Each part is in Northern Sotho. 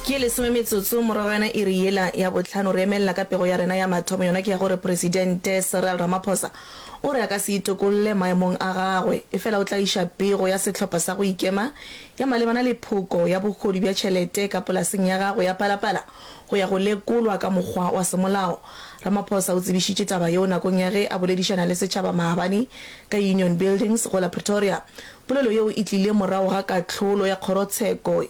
Ke lesome metsotso morago ga yona iri yela ya bohlano, re emelela ka pego ya rena ya mathomo, yona ke ya gore Presidente Cyril Ramaphosa o re a ka se itokolle maemong a gagwe, efela o tla iša pego ya sehlopha sa go ikema ya malebana le phoko ya bogodu bja tšhelete ka polaseng ya gagwe ya Palapala go ya go lekolwa ka mokgwa wa semolao. Ramaphosa o tsebišitše taba yeo nakong ya ge a boledišana le setšhaba maabane ka Union Buildings go la Pretoria. Polelo yeo e tlile morago ga kahlolo ya kgorotsheko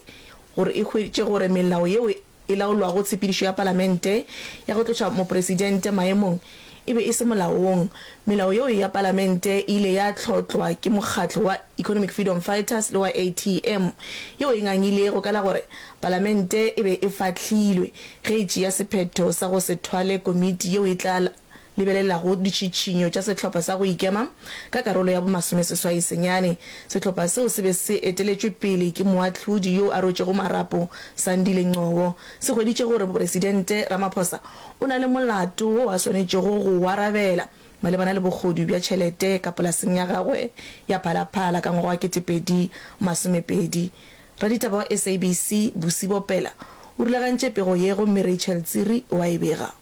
gore e hweditše gore melao yeo e laolwago tshepedišo ya Palamente ya go tloša Mopresidente maemong e be e se molaong. Melao yeo ya Palamente e ile ya hlotlwa ke mokgatlo wa Economic Freedom Fighters le wa ATM yeo e ngangilego ka la gore Palamente e be e fahlilwe ge e tšea sephetho sa go se thwale komiti yeo e tla lebelelago ditšhitšhinyo tša sehlopha sa go ikema ka karolo ya bomasomeseswai senyane. Sehlopha seo se be se eteletšwe pele ke moahlodi yo a rwetšego marapo Sandile Ngcobo, se hweditše gore Mopresidente Ramaphosa o na le molato wo a swanetšego go o arabela malebana le bogodu bja tšhelete ka polaseng ya gagwe ya Phalaphala ka ngwaga wa 2020. Raditaba wa SABC Busi Bopela o rulagantše pego ye gomme Rachel Tsiri o a e bega.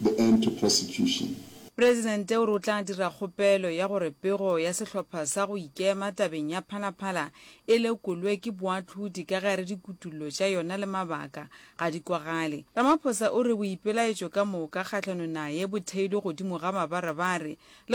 The End to Prostitution. Presidente o re o tla dira kgopelo ya gore pego ya sehlopha sa go ikema tabeng ya Phalaphala e lekolwe ke boahlodi ka gare dikutullo tša yona le mabaka ga di kwagale. Ramaphosa o re boipelaetšo ka moka kgahlanong naye bo theilwe godimo ga mabarebare le